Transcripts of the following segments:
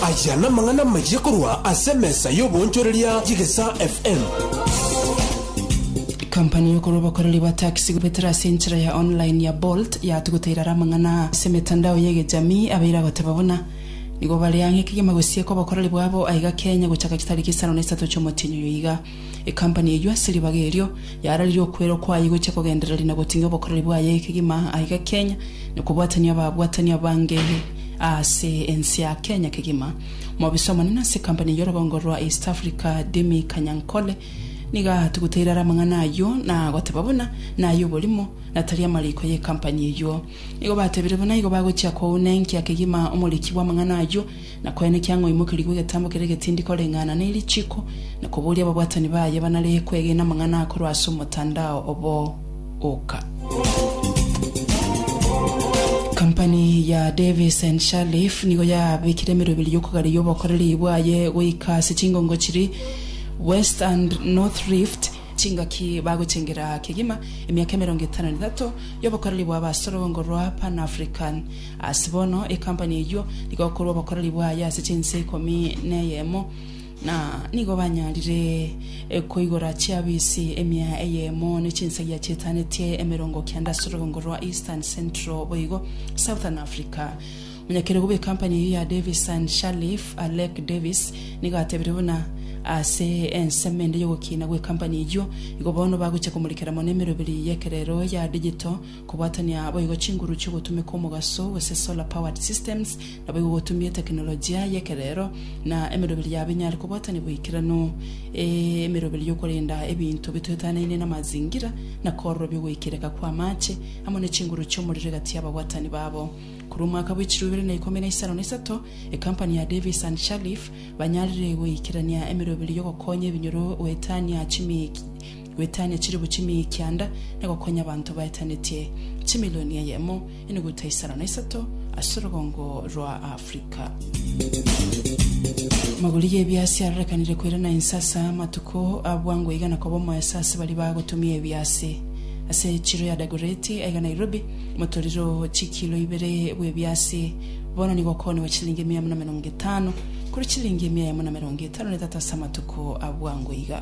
Aya namang'ana amayia korwa ase emesa y'ogoonchoreria Chigesa FM. Company y'okora obokoreri bwa taxi goetera ase enchera ya online ya Bolt yatuguta irara amang'ana ase emetandao y'egechamii abaire agoteba buna nigo bare ang'e kegima gosieka obokoreri bwabo aiga Kenya gochaka chitariki isano na isato chi'omotienyi oyo iga. Ekampani eyio ase ribaga erio yararirie okwerwa kwaye gochia kogendereria na goting'ia obokoreri bwaye kegima aiga Kenya na kobwatania ababwatani abange aase ense ya Kenya kegima. Omobisa omonene ase ekampani eyio rogongo rwa East Africa Demi Kanyankole nigo atuguteire are amang'ana ayio na goteba buna naye oborimo na tari amariko y'ekampani eyio. Nigo batebire buna igo bagochia kouna enkia kegima omoriki bw'amang'ana ayio Na koene kiang'oimokerigwe egetambo keria egetindi koreng'ana ne richiiko, na koboria ababwatani baye banaree kwegena amang'ana akorwa ase omotandao obo oka. Company ya Davis and Shalliff nigo yabekire emerwa ebere y'okogareria obokoreri bwaye goika ase chingongo chiri West and North Rift, chingaki bagotengera kegima emiaka emerongo etano na etato y'obokoreri bwabo ase orogongo rwa Pan-African. Ase bono ekampani eyio nigo ekorwa obokoreri bwaye ase chinse ikomi neyemo, na nigo banyarire koigora chiafisi emia eyemo ne chinsagia chietanetie emerongo kenda ase orogwongo rwa Eastern, Central boigo Southern Africa. Omonyakerogo bw'ekampani eyio ya Davis and Sharleaf, Alec Davis, nigo atebire buna ase ensemo ende y'ogokina gw'ekampani eyio, Igo bono bagochia komorikera mono emeroberi y'ekerero ya digital, Kobwatania boigo chinguru chi'ogotumeka omogaso gose solar powered systems naboigo gotumie tekinolojia y'ekerero na emeroberi ya binyare kobwatania boikeranu. Emeroberi y'okorenda ebinto bitoetanaine namazingira na kororobia ogoikereka kw'amaache amo ne chinguru chi'omorero egati y'ababwatani babo. Korwa omwaka bw'echirwa ibere na ikomi na isano na isato, ekampani ya Davis and Shalliff banyarire goikerania emeroberi y'ogokonya ebinyoro goetania chimikia Goetania chilifu chimia y'ekianda na gokonya abanto baetanetie chimilioni eyemo na enuguta isano na isato ase orogongo rwa Africa. Amagori y'ebiasi arorekanire koirana inse ase amatuko a bwango iga na koba omoeso ase baria bagotumia ebiasi. Ase chiro ya Dagoretti aiga Nairobi, omotoriro o chikilo ibere bw'ebiasi bono nigo okooniwa chilingi mia emo na emerongo etano korwa chilingi mia emo na emerongo etano na etato ase amatuko a bwango iga.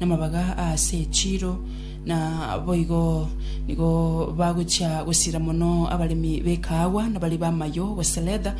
namabaga aase echiiro, na boigo nigo bagochia gosira mono abaremi b'ekaagwa na baria b'amayo, gose leather,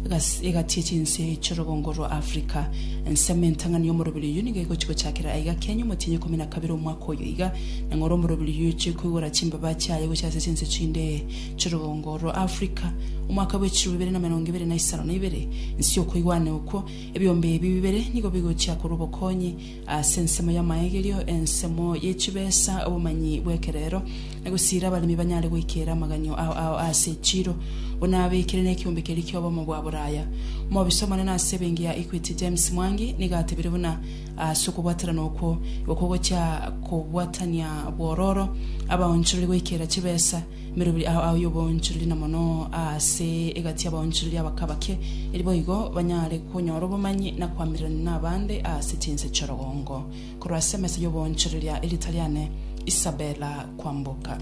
egas- egati echinse chi'orogongo rwa Africa. Ensemo entang'ani y'omoroberi oyio nigo egochia gochakera aiga kiaNyio omotienyi ikomi na kabere omwaka oyo iga, na ng'ora omoroberi oyio ochie koigora chimbaba chiaye gochia ase chinse chinde chi'orogongo rwa Africa. Omwaka bw'echiruu ibere na emerongo ebere na isano na ibere, inse y'okoigwana okwo, ebiombe ebi bibere nigo bigochia korwa obokonyi, Ase ensemo y'amaegerio, ensemo ye chibesa, obomanyi bw'ekerero, na gosiira abaremi banyare goikera amaganyo ao ao ase echiiro, buna abekire nekiombe keria ki'obomo bwa boraya. Omobisa omonene ase ebenki ya Equity James Mwangi nigo atebire buna ase okobwaterana okwo igo kogochia kobwatania bwororo abaonchorori goikera chibesa Merobiri ao ao y'oboonchoreria na mono aase egati y'abaonchoreria abake abake, eri boigo banyare konyora obomanyi na koamererania nabande aase chinse chi'orogongo. Korwa ase emesa y'oboonchoreria erieta riane Isabella Kwamboka.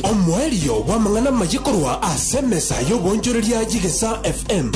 Omoerio bw'amang'ana amaye korwa ase emesa y'oboonchoreria y'Egesaa FM.